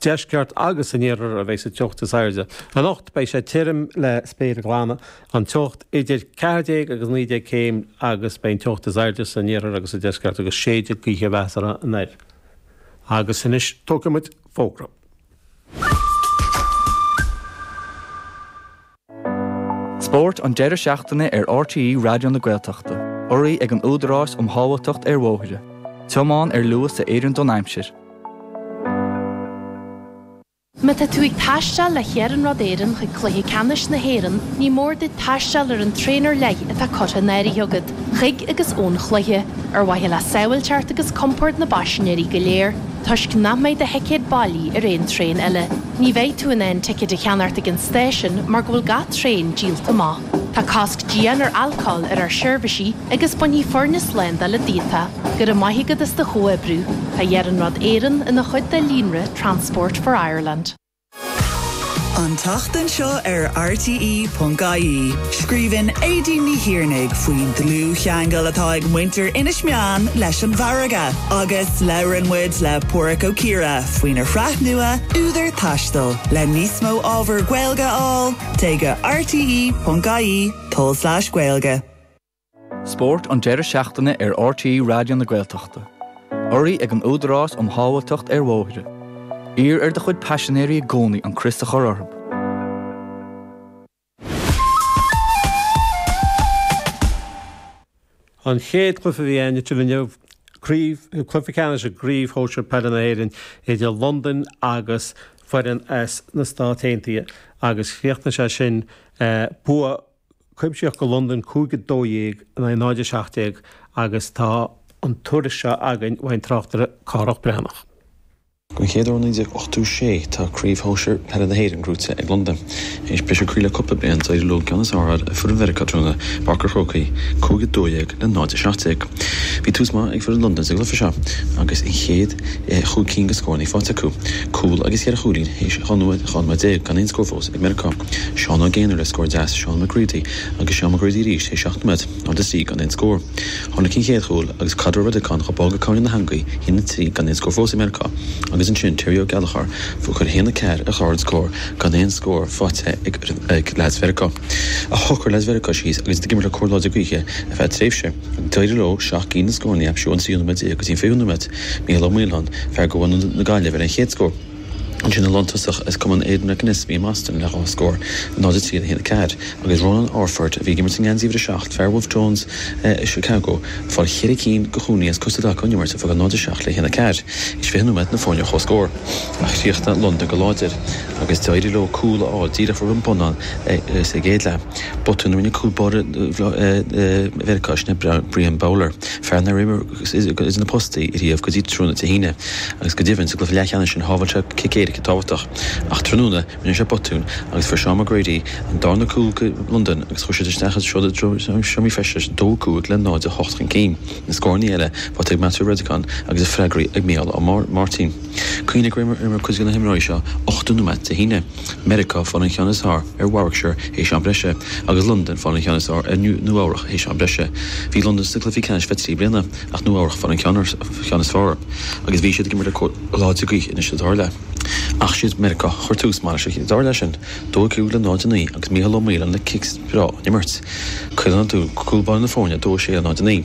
deisceart agus san iarthar a bheas an teocht is airde. Anocht beidh sé tirim le spéir ghlan, an teocht idir 14 agus 19 céim agus beidh an teocht is airde san iarthar agus sa deisceart agus séidfidh gaoithe mheasartha anoir agus anois tógfaidh muid fógraí. Spórt an deireadh seachtaine ar RTÉ Raidió na Gaeltachta, urraithe ag an Údarás um Shábháilteacht ar Bhóithre, tiomáin ar luas a oireann don aimsir. Má tá tú ag taisteal le hIarnród Éireann chuig Cluiche Ceannais na hÉireann ní mór duit taisteal ar an traein ar leith atá curtha in áirithe agat chuig agus ón chluiche, ar mhaithe le sábháilteacht agus compord na bpaisinéirí go léir. Toisc nach mbeidh do thicéad bailí ar aon traein eile, ní bheidh tú in ann ticéad a cheannacht ag an stáisiun mar go bhfuil gach traein díolta amach. Tá cosc dian ar alcól ar ár seirbhísí agus bainfidh foirne slándála díot é. Go raibh maith agat as do chomhoibriú. Tá Iarnród Éireann ina chuid de líonra Transport for Ireland. An tseachtain seo ar RTÉ.ie, scríobhann Aedín Ní Thiarnaigh faoin dlúthcheangal atá ag muintir Inis Meáin leis an bhfarraige agus labhrann muid le Pádhraic Ó Ciardha faoina shraith nua Údar Taistil. Le níos mó ábhar Gaeilge a fháil, téigh go rte.ie/gaeilge. Spórt an deireadh seachtaine ar RTÉ Raidió na Gaeltachta. Urraithe ag an Údarás um Shábháilteacht ar Bhóithre. Iarr ar do chuid paisinéirí i gcónaí an crios a chur orthu. An chéad chluiche a bhí ann idir inniu, cluiche ceannais i gCraobh Shóisir Peile na hÉireann idir Londain agus foireann as na Stáit Aontaithe agus chríochnaigh sé sin bua cuimsitheach go Londain, 5 12 in aghaidh 0 17, agus tá an tuairisc seo againn ón tráchtaire Cárthach Breathnach. Don chéad uair ó 1986 tá Craobh Shóisir Peile na hÉireann buaite ag Londain. Théis briseadh croí le cúpla bliain, d'éirigh leo an ceann is fearr a fháil ar fhoireann Mheiriceá tráthnóna i bPáirc an Chrócaigh, 5 12 le 0 17. Bhí tús maith ag foireann Londain sa gcluiche seo agus an chéad. chúig cinn go scóranna faighte acu, cúl agus cheithre chúilín théis dhá nóiméad déag, gan aon scór fós ag Meiriceá. Seán Ó Géanair le scór deas, Seán McGready agus Seán McGready arís théis seacht nóiméad, ard is lí, gan aon scór. Tháinig an chéad chúl agus caid ó Redekon chomh bog le cúl na heangaí, a haon a trí, gan aon scór fós ag Meiriceá, agus ansin Terry Ó Gallchóir ag cur a haon a ceathair ar chlár na scór gan aon scór faighte ag leaids Mheiriceá. Ach shocair leaids Mheiriceá síos agus ag imirt le cóir láidir gaoithe ar feadh tréimhse. D'éirigh leo seacht gcinn go scóranna a aimsiú ón tríú nóiméad déag go dtí an fichiú nóiméad, Mícheál Ó Maoláin, fear de bhunadh na Gaillimhe, fuair an chéad scór. Ansin an lántosach as cumann Aidan McAnespie i mBoston le dhá scór, 0-3 le 1-4, agus Rónán Orford, a bhí ag imirt i ngeansaí uimhir a seacht, fear Wolfe Tones i Chicago, ag fáil ceithre cinn de chúilíní as cosa i dtaca ón imirt a d'fhág 0-7 le 1-4. Théis fiche nóiméad na foirne ar chomhscór. Ach chríochnaigh Londain go láidir agus d'éirigh leo cúl a fháil díreach roimh an mbonnán sa gcéad leath, botún a rinne cúl báire Mheiriceá sin, Brian Bowler, fear nár imir go idir na postaí riamh go dtí tráthnóna Dé hAoine, agus go deimhin sa gcluiche leathcheannais sin shábháil sé cic éirice tábhachtach. Ach tráthnóna rinne sé botún agus fuair Seán McGrady an darna cúl do Londain agus chuaigh siad isteach ar sodar sna seomraí feistis 2-5 le 0-8 chun cinn. Na scórannaí eile faighte ag Matthew Redican agus iad freagraithe ag Mícheál Ó Máirtín. Cuimhnigh go raibh cuid de na himreoirí seo 80 nóimeat Dé hAoine. Meiriceá fuair an ceann is fearr ar Warwickshire théis am breise, agus Londain fuair an ceann is fearr ar Nua Eabhrac théis am breise. Bhí Londain sa gcluiche ceannais le trí bliana, ach Nua Eabhrac fuair an ceann is fearr, agus bhí siad ag imirt le cóir láidir gaoithe anois sa darna leath. Ach siad Meiriceá a chuir tús maith leis an darna leath sin. 2 5 le 0 9, agus Mícheál Ó Maoláin le cic breá ón imirt. Chuir an cúl idir na foirne 2 6 le 0 9.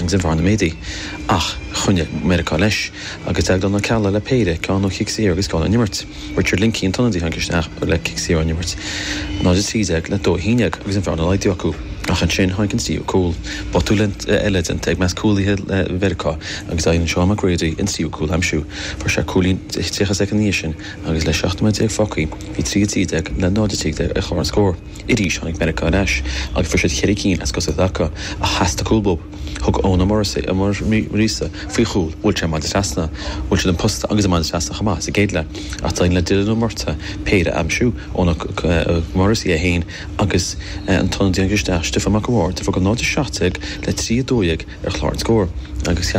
agus an bhearna ag méadú, ach choinnigh Meiriceá leis, agus Déaglán Ó Ceallaigh le péire ceann ó chic saor agus ceann ón imirt, Richard Lingkey an t-ionadaí a tháinig isteach le cic saor ón imirt, 0-13 le 2-11, agus an bhearna ag laghdú acu. Ach ansin tháinig an tríú cúl. Botún eile déanta i measc cúlaithe Mheiriceá agus d'éirigh le Seán McGrady an tríú cúl a aimsiú. Fuair sé cúilín 30 soicind ina dhiaidh sin agus le 17 nóiméad fágtha bhí 3-12 le 0-13 ar chlár an scóir. Arís tháinig Meiriceá ar ais agus fuair siad ceithre cinn as cosa i dtaca, ach theastaigh cúl uathub. Thug Eoin Ó Muiríosa faoi chúl bhuail sé an maide trasna, bhuail siad an posta agus an maide trasna chomh maith sa gcéad leath. Ach d'éirigh le Dylan Murtagh péire a aimsiú, Eoin Ó Muiríosa é féin agus an t-ionadaí a tháinig isteach Stiofán Mac an Bhaird, a d'fhág 0-17 le 3-12 ar chlár an scóir agus ceapadh